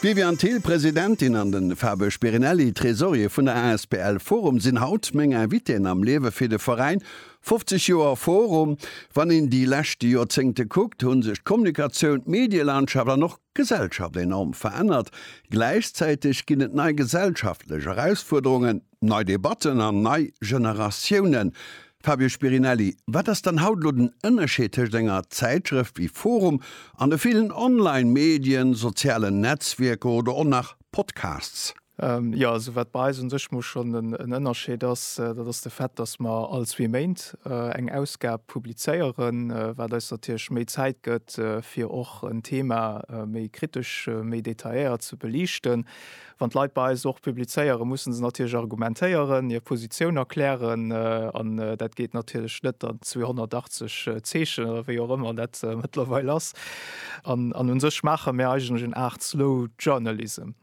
D'Viviane Thill, Presidentin, an de Fabio Spirinelli, Tresorier vun der asbl Forum, sinn haut meng Invitéen am Liewe fir de Veräin. 50 Joer Forum, wann een déi leschte Joerzéngte kuckt, hu sech d'Kommunikatioun, d'Medielandschaft an och d'Gesellschaft enorm verännert. Gläichzäiteg ginn et nei gesellschaftlech Erausfuerderungen. Nei Debatten an nei Generatiounen. Fabio Spirinelli, wat ass dann haut elo den Ënnerscheed tëscht enger Zäitschrëft wéi forum an de villen online Medien, sozialen Netzwierker oder och nach Podcasts? Jo, also wat bei eis un sech mol schonn en Ënnerscheed ass, dat ass de Fait, datt mer all zwee Méint eng Ausgab publizéieren, wat eis natierlech méi Zäit gëtt fir och en Thema méi kritesch, méi detailléiert ze beliichten. Wann d'Leit bei eis och publizéieren, mussen se natierlech argumentéieren, hir Positioun erklären an dat geet natierlech net an 280 Zeechen oder wéi och ëmmer dat mëttlerweil ass. An un sech maache mär eigentlech eng Aart Slow Journalism.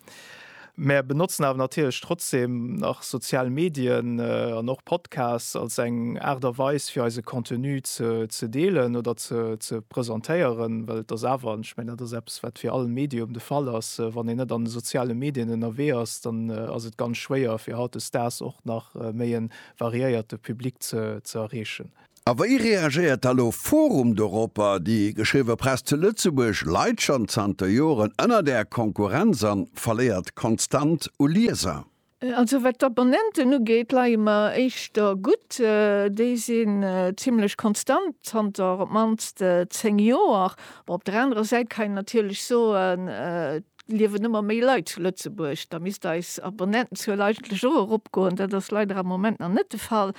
Mär benotzen awer natierlech trotzdem nach sozial Medien an och Podcasts als eng Aart a Weis fir eise Contenu ze deelen oder ze presentéieren, well et ass awer, an ech mengen dat ass eppes, Ass, wat fir all Medium de Fall ass, wann een net an de soziale Medien ënnerwee ass, dann ass et ganz schwéier fir hautdesdaags och nach méi e variéierte Public ze erreechen. A wéi reagéiert da lo forum doropper? Déi geschriwwe Press zu Lëtzebuerg leit schonn zanter Joren ënnert Är Konkurrenz an verléiert konstant u Lieser. Also wat d'Abonnenten ugeet, leie mer éischter gutt. Déi sinn zimmlech konstant zanter op d'mannst 10 Joer. Bon, op der anerer Säit kann een natierlech soen, et liewen ëmmer méi Leit zu Lëtzebuerg, da misst eis Abonnentenzuel eigentlech och eropgoen. Dat ass leider am Moment nach net de Fall.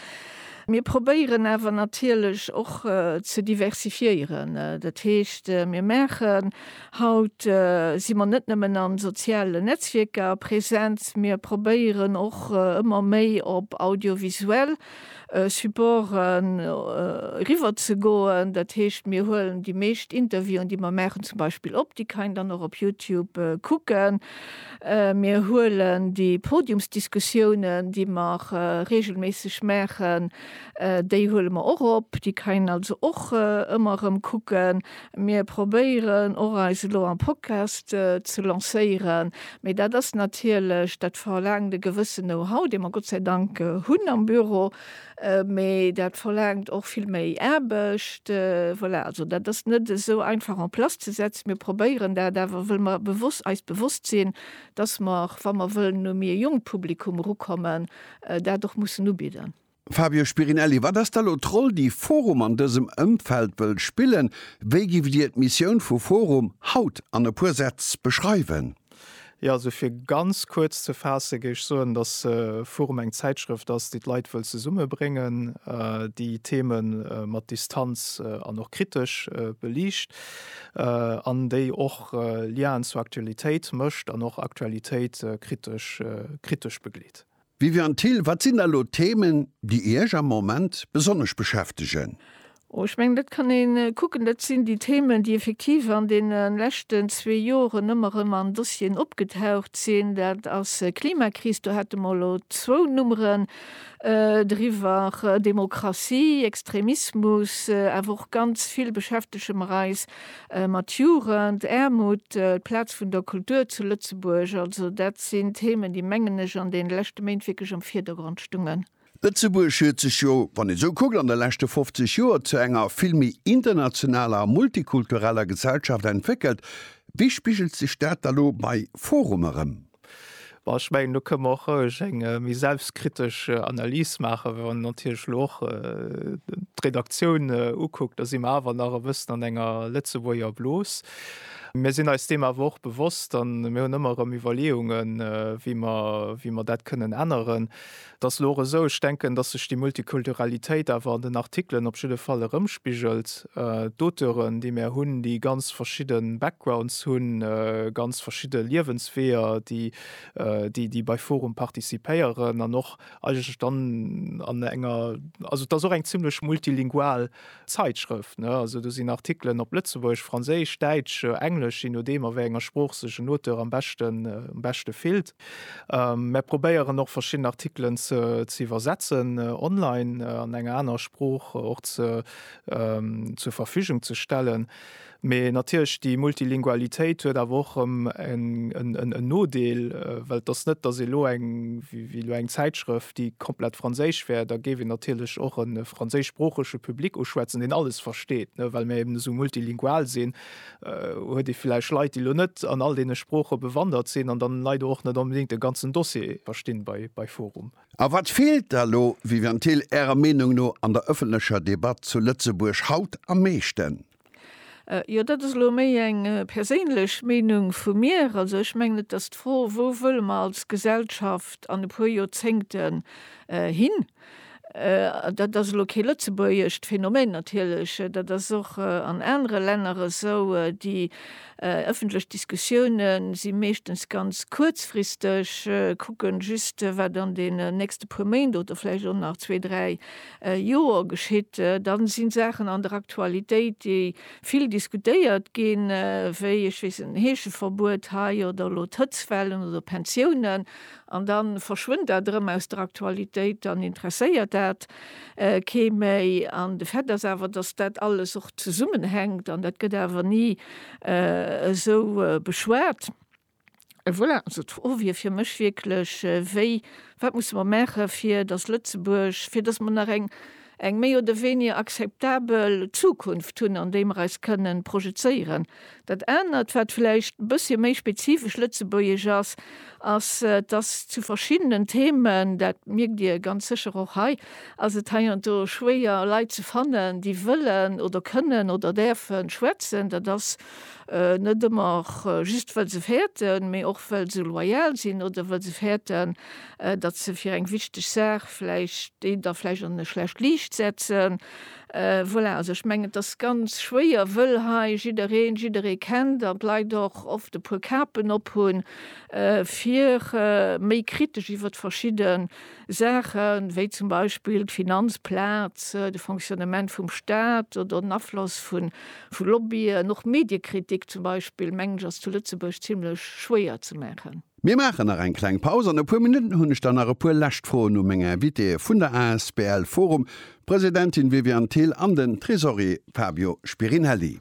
Mir probéieren awer natierlech och ze diversifiéieren. Dat heescht, mir maachen. Haut si mer net nëmmen an sozialen Netzwierker präsent, mir probéieren och ëmmer méi op audiovisuell Supporten eriwwer ze goen. Dat heescht, mir huelen déi meescht Interviewen, déi mer maachen, zum Beispill op, déi kann een dann och op Youtube kucken. Mir huelen déi Podiumsdiskussiounen, déi mer reegelméisseg maachen, déi huele mer och op, déi kann een also och ëmmer erëm kucken. Mir probéieren och eis elo am Podcast ze lancéieren, mee dat ass natierlech, dat verlaangt e gewëssen Know-how, dee mer Gott sei Dank hunn am Büro, mee dat verlaangt och vill méi Aarbecht. Voilà, also dat ass net esou einfach en place ze setzen. Mir probéieren dat awer, wëll mer bewosst, eis bewosst sinn, dass mer, wa mer wëllen un e méi jonkt Publikum erukommen, dat och mussen ubidden. Fabio Spirinelli, Wat ass da elo d'Roll déi forum an dësem Ëmfeld wëll spillen? Wéi giff Dir d'Missioun vu forum haut an e puer Sätz beschreiwen? Jo, also fir ganz kuerz ze faasse géif ech soen, datt forum eng Zäitschrëft ass déi d'Leit wëll zesumme bréngen, déi Theme mat Distanz an och kritesch beliicht an déi och Liaen zur Aktualitéit mécht an och Aktualitéit kritesch begleet. Viviane Thill, Wat sinn da elo d'Themen, déi Iech am Moment besonnesch beschäftegen? Oh, ech mengen, dat kann ee kucken. Dat sinn déi Themen, déi effektiv an deene leschten zwee Joren ëmmer erëm an Dossieren opgetaucht sinn. Dat ass Klimakris, do hate mer elo zwou Nummeren driwwer, Demokratie, Extremismus, awer och ganz vill beschäftege mer eis mat Jugend, Aarmut, d'Plaz vun der Kultur zu Lëtzebuerg, also dat sinn Themen, déi, mengen ech, an deene leschte Méint wierklech am Virdergrond stungen. Lëtzebuerg huet sech jo, wann ee sou kuckt, an de leschte 50 Joer zu enger vill méi internationaler a multikultureller Gesellschaft entwéckelt. Wéi spigelt sech dat da lo bei forum erëm? Bon, ech mengen, do kënne mer och roueg eng méi selbstkritesch Analys maachen. Wa een natierlech elo och d'Redaktioun ukuckt, da si mer awer nach e bëssen an enger Lëtzebuerger Blos. Mir sinn eis deem awer och bewosst an mir hunn ëmmer erëm Iwwerleeungen, wéi mer dat kënnen änneren. Et ass elo och esou, ech denken, datt sech déi Multikulturalitéit awer an den Artikelen op jidde Fall erëmspigelt. D'Auteuren, déi mär hunn, déi ganz verschidde Backgrounds hunn, ganz verschidde Liewensweeër, déi, déi bei forum participéieren an och eigentlech dann an enger, also et ass och eng zimlech multilingual Zeitschrëft, ne? Also do sinn Artikelen op Lëtzebuergesch, Franséisch, Däitsch, Englesch, je nodeem a wéi enger Sprooch sech en Auteur am beschten, am beschte fillt. Mär probéieren och verschidden Artikelen ze, ze iwwersetzen, online an enger anerer Sprooch och ze, zur Verfügung ze stellen. Mee natierlech, déi Multilingualitéit huet awer och erëm en Nodeel, well et ass net, datt ee elo eng, wéi elo eng Zäitschrëft, déi komplett franséisch wär, da géif een natierlech och e franséischsproochege Public uschwätzen, deen alles versteet. Well mir eben esou multilingual sinn, huet ee vläicht Leit, déi elo net an all deene Sprooche bewandert sinn an dann leider och net onbedéngt de ganzen Dossier verstinn bei forum. A wat feelt da elo, Viviane Thill, Ärer Meenung no an der ëffentlecher Debatt zu Lëtzebuerg haut am meeschten? Jo, dat ass elo méi eng perséinlech Meenung vu mir. Also ech mengen et ass d'Fro, wou wëlle mer als Gesellschaft an e puer Joerzéngten hin. Dat ass elo kee lëtzebuergescht Phänomen natierlech, dat ass och an anere Länner esou. Déi ëffentlech Diskussioune si meeschtens ganz kuerzfristeg, kucken just wat an deenen nächste puer Méint oder vläicht och nach zwee, dräi Joer geschitt, da si Saachen an der Aktualitéit, déi vill diskutéiert ginn, wéi, ech weess net, Heescheverbuet hei oder elo d'Hëtzwellen oder Pensiounen, an da verschwënnt dat erëm aus der Aktualitéit, dann interesséiert dat kee méi. An de Fait ass awer, datt dat alles och zesummenhänkt, an dat gëtt awer ni esou beschwat. Voilà, also d'Fro wier fir mech wierklech, wéi, wat musse mer maachen, fir datt Lëtzebuerg, fir datt mer nach eng, eng méi oder weniger akzeptabel Zukunft hunn, an déi mer eis kënnen projezéieren. Dat anert, wat vläicht e bëssche méi spezifesch lëtzebuergesch ass, ass, datt zu verschiddenen Themen, dat mierkt Dir ganz sécher och hei, ass et heiansdo schwéier Leit ze fannen, déi wëllen oder kënnen oder däerfe schwätzen. Dat ass. net ëmmer just well se fäerten, mee och well se loyal sinn oder well se fäerten, datt se fir eng wichteg Saach vläicht deen da vläicht an e schlecht Liicht setzen. Voilà, also ech mengen et ass ganz schwéier, wëll hei jiddereen jidderee kennt an d'Leit och oft e puer Kapen ophunn, fir méi kritesch iwwert verschidde. Saache wéi zum Beispill d'Finanzplaz, de Fonctionnement vum Staat oder den Afloss vu Lobbyen. Och Mediekritik zum Beispill, mengen ech, ass zu Lëtzebuerg zimlech schwéier ze maachen. Mir maachen nach eng kleng Paus. An e puer Minutten hunn ech dann nach e puer lescht Froen u meng Invitéeë vun der asbl Forum, d'Presidentin Viviane Thill an den Tresorier Fabio Spirinelli.